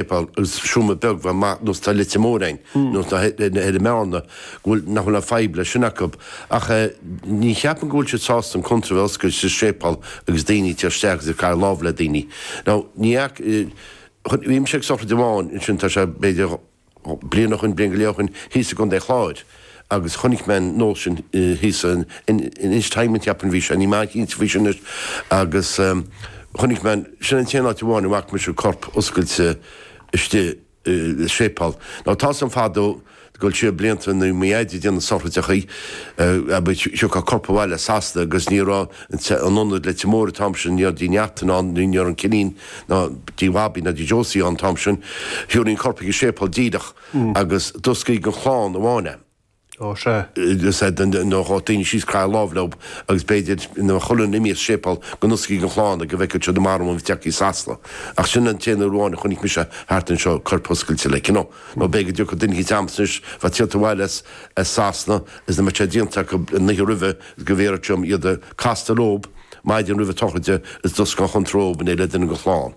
séipéal, is cuma beag bheith maith nó tá Leitir Móir fhéin, nó tá ar an meán go bhfuil nach bhfuil aon fhadhb leis sin acu. Ach ní cheapaim go bhfuil siad sásta an chónra a bheith oscailte sa séipéal agus daoine ag goil isteach agus ag craitheadh lámh le daoine. Now ní fhaca, bhí mise ag sochraid amháin ansin tá sé b'fhéidir bliain ó shoin, bliain go leith ó shoin, thíos i gContae an Chláir. agus chonaic mé an nós sin thíos in Ennistymon a cheapaim a bhí sé, níl mé an-chinnte faoi sin anois, agus chonaic mé, sin an t-aon áit amháin a bhfaca mise corp oscailte istigh i séipeál. Now tá's a'm fadó ag goil siar blianta nuair a bhí mo Dhaid ag déanamh sochraideachaí, abair, thiocfadh corp abhaile as Sasana agus ní raibh aon ionad i Leitir Móir an t-am sin, ní raibh Tigh Neachtain ann, ní raibh an Cillín ná Tigh Bhobby ná Tigh Josie ann an t-am sin, thiúrfaí an corp chuig an séipeál díreach. agus d'osclaítí don chlann amháin é. Ó, sea. Is é, you know, ghabhadh daoine síos ag craitheadh lámh leo agus b'fhéidir, nuair a bheadh chuile dhuine imithe as an séipéal go n-osclaítí don chlann é go bhfeicfeadh siad an marbhán a bhí tagtha as Sasana. Ach sin an t-aon uair amháin a chonaic mise thart anseo corp oscailte, like, you know. Nó b'fhéidir go dtiocfadh duine eicínt ams anois a bheadh ag tíocht abhaile as as Sasana is nach mbeadh sé déanta acu an oíche roimhe is go bhfiafródh siad díom castáil leo maidin roimh an tsochraid is d'osclóinn an chónra dóibh in éindí le duine den chlann.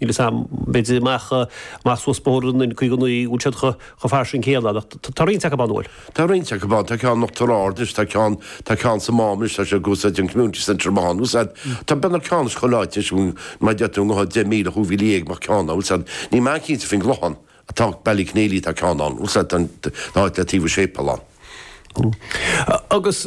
Níl fhios a'm, b'fhéidir amach amach suas Bóthar an N. 59, an bhfuil siad chomh fairsing céanna ach tá roinnt acu ann, an bhfuil? Tá roinnt acu ann, tá ceann in Uachtar Ard anois, tá ceann, tá ceann sa Mám anois, tá siad ag úsáid an Community Centre maith ann, an bhfuil fhios a'd? Tá, beidh na ceann is chomh láidir anois, an bhfuil? Mar deir tú i ngoireacht deich míle, cúig mhíle dhéag bheadh ceann ann, an bhfuil fhios a'd? Níl mé an-chinnte faoin gClochán tá, Ballyconneely tá ceann ann, an bhfuil fhios a'd, tá an, tá áit le taobh an tséipéil ann. Agus.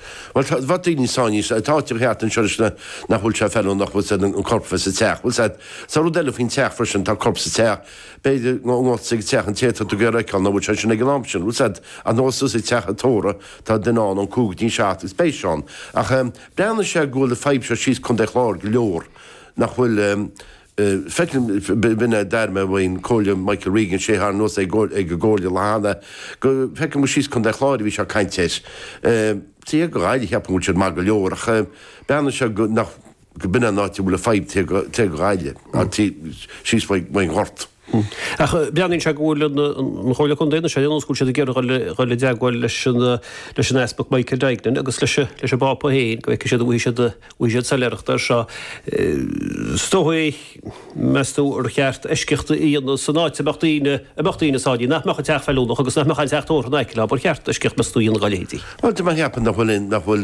Bhuel, dá mbeadh daoine sáinnithe, tá áiteacha thart anseo anois nach bhfuil sé feiliúnach, bhfuil fhios a'd, an corp a bheith sa teach. Bhfuil fhios a'd, tá rud eile faoin teach freisin, tá corp sa teach, b'fhéidir go ngabhfá ag an teach an té atá tú ag iarraidh a fheiceáil, nach bhfuil sé sin ag an am sin, bhfuil fhios a'd, ach gabh suas ag teach an tórraimh, tá duine ann, ón cúig go dtí an seacht is beidh sé ann. Ach breathnaíonn sé go bhfuil an fhadhb seo síos Contae an Chláir go leor, nach bhfuil, Feicim, b'in é d'airigh mé ón gComhairleoir Michael Regan, sé a tharraing anuas é ag an gComhairle an lá cheana, go, feicim gur síos Contae an Chláir a bhí sé ag caint air. Taobh thiar de Ghaillimh, cheapfainn go bhfuil siad maith go leor ach breathnaíonn sé go nach, go b'in an áit a bhfuil an fhadhb, taobh thoir de Ghaillimh, an, síos faoin nGort. Ach breathnaíonn sé go bhfuil an Chomhairle Contae, nó sé an nós, go bhfuil siad ag iarraidh dul i dteagmháil leis an Easpag Michael Duignan agus leis an bPápa féin go bhfeicfidh siad an bhfaighidh siad an bhfaighidh siad soiléireacht air seo. Is dóigh, meas tú, ar cheart eisceacht a dhéanamh san áit a mbeadh daoine a mbeadh daoine sáinnithe, nach mbeadh an teach feiliúnach agus nach mbeadh aon teach tórraimh in aice leo, ba cheart eisceacht, meas tú, a dhéanamh dá leithéidí? Bhuel, de bharr cheapfainn nach bhfuil, nach bhfuil.